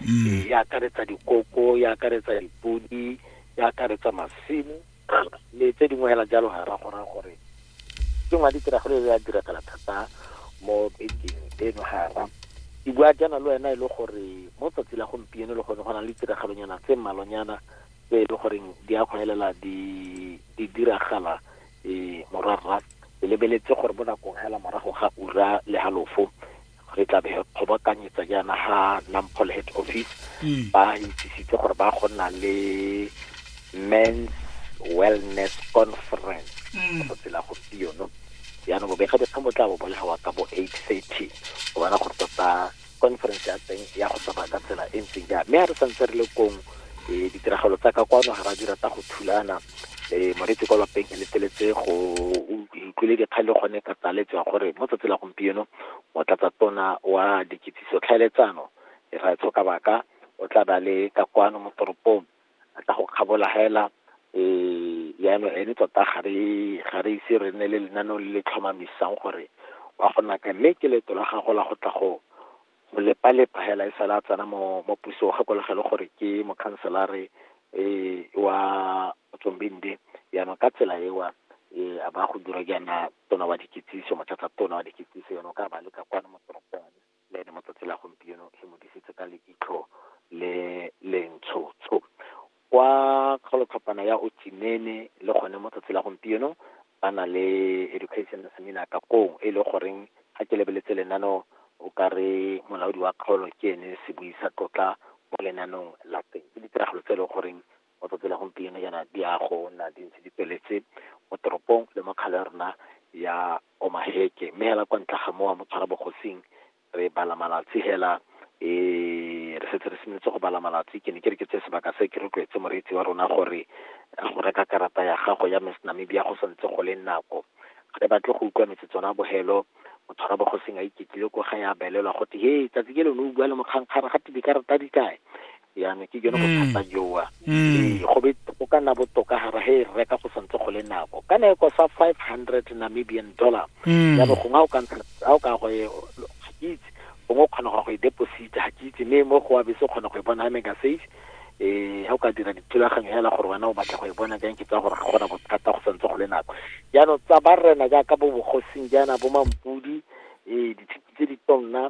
mm. e, e akaretsa dikoko e akaretsa dipodi e akaretsa masimo le tse dingwe hela jalo ga ra kgona gore ke ngwa ditiragalo e ya diragala thata mo bekeng eno gara ke bua jaana le wena e le gore mo tsatsi la gompieno e le gone go na le ditiragalonyana tse mmalonyana tse e le goreng di a kgwelela di diragala um morwarra lebeletse gore mo nakong hela morago ga ura le halofo re tla be re kgobokanyetsa jaana ga nampole head office mm. ba itsisitse gore ba go nna le men's wellness conference mm. go tsela gompieno jaanong bobega dikgang bo tla bo bolegawa ka bo eight thirty go bona gore tota conference ya teng ya go tsamaya ka tsela e ntseng jang mme ga re santse re le kong um ditiragalo tsa ka kwano ga ra di rata go thulana e moretse kwa lapeng ke leteletse go utlwile dikgang le gone ka tsaletse ya gore mo tsatsi la gompieno motlatsa tona wa dikitsiso tlhaeletsano e ra tshoka baka o tla ba le ka kwano mo toropong a tla go kgabola hela um yaanong ene tota ga re ise re nne le lenaneo le le tlhomamisang gore wa go naka mme ke leeto la gago la go tla go go lepalepa hela e sala a tsena mo mo pusong gakologelo gore ke mokhanselare um wa tsombende yaanong ka tsela ewa um a ba go dira jaana tona wa dikitsiso mothatsa tona wa dikitsiso yone o ka ba leka kwane mo toropong le ene mo tsatsi la gompieno e mo disitse ka leitlho le lentshotsho Kwa kgaolotlhopana ya Otjimene le gone mo tsatsi la gompieno ba na le education seminar ka koo e le goreng ga ke lebeletse lenano o ka re molaodi wa kgaolo ke ene se buisa tlotla mo lenanong la teng ke ditiragalo tse e le goreng mo tsatsi la gompieno jaana di a go nna di ntse di tsweletse mo toropong le mo kgale rona ya Omaheke mme hela kwa ntle ga mowa mo tshwara bogosing re bala malatsi hela e re setse re simolotse go bala malatsi ke ne ke re ke tse sebaka se ke rotloetse moreetsi wa rona gore a go reka karata ya gago ya miss namibia go santse go le nako ga re batle go utlwa metse tsona bogelo motho ra bogoseng a iketlile ko ga ya belelwa go te he tsatsi ke lone o bua le mokgankgara ga te dikarata di kae jaanong ke jone bothata mm. joa mm. ee go be go ka nna botoka ga ra he re reka go santse go le nako ka ne e kosa five hundred namibian dollar mm. jaanong gongwe o ka ntsha a o ka go e, ga ke itse gongwe o kgona go go e deposita ga ke itse mme mo go wa bese o kgona go e bona ga mega safe eh ha o ka dira dithulaganyo hela gore wena o batla go e bona jang ke tsa gore ga gona bothata go santse go le nako jaanong tsa ba rena jaaka bo bogosing jaana bo mampudi eh ditshiti tse di tonna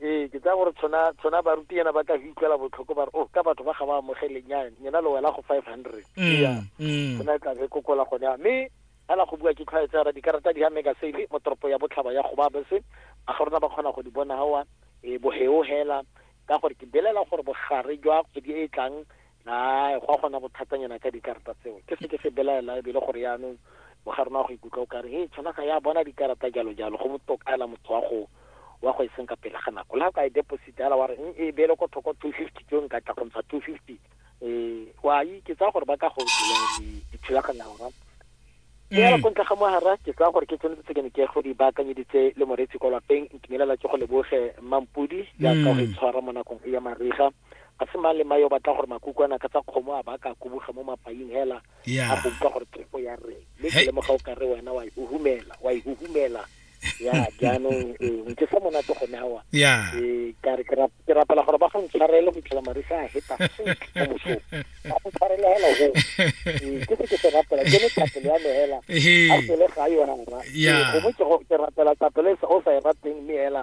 ee ke tsaya gore tshona tshona baruti yana ba ka go utlwela botlhoko ba re o oh, ka batho ba ga ba amogele nyane nyena le wela go five hundred mm, mm. tsona e tlabe kokola gone ya mme fela go bua ke tlhwaetsara dikarata di ya mega sale mo toropo ya botlhaba ya goba bese a ga rona ba kgona go di bona gawa e eh, boheo hela ka gore ke belela gore bogare jwa kgwedi e e tlang Hai, go a gona bothatanyana ka dikarata tseo. Ke se ke se belaela ebile gore yaanong o ga rona go ikutlwa o kare he tshwana ga ya bona dikarata jalo jalo go botoka ela motho wa go wa go e seng ka pele ga nako la ka e deposit ala wa re eng e bele ko thoko 250 tso nka tla go ntsha 250 eh wa yi ke tsa gore ba ka go dira dithulaganya rona ke ya go ntle ga mohara ke tsa gore ke tsone tse ke ne ke go di baakanyeditse le moretsi kwa lapeng ntumelela ke go leboge mampudi ya ka go tshwara mo nakong ya mariga ga se mang le mang yo batla gore makukwana ka tsa kgomo a ba ka kubuga mo mapaing hela a go utlwa gore thefo ya rre le ke lemoga o ka re wena wa ihuhumela wa ihuhumela ya jaanong ee ke sa monate gone awa ee ka re ke rapela gore ba go ntshwarele go itlhela marisa a heta mo mosong ba go tshwarele hela go ee ke se ke se rapela ke le tapelo ya me hela a pele ga yona ee gongwe ke rapela tapelo e o sa e rateng mme hela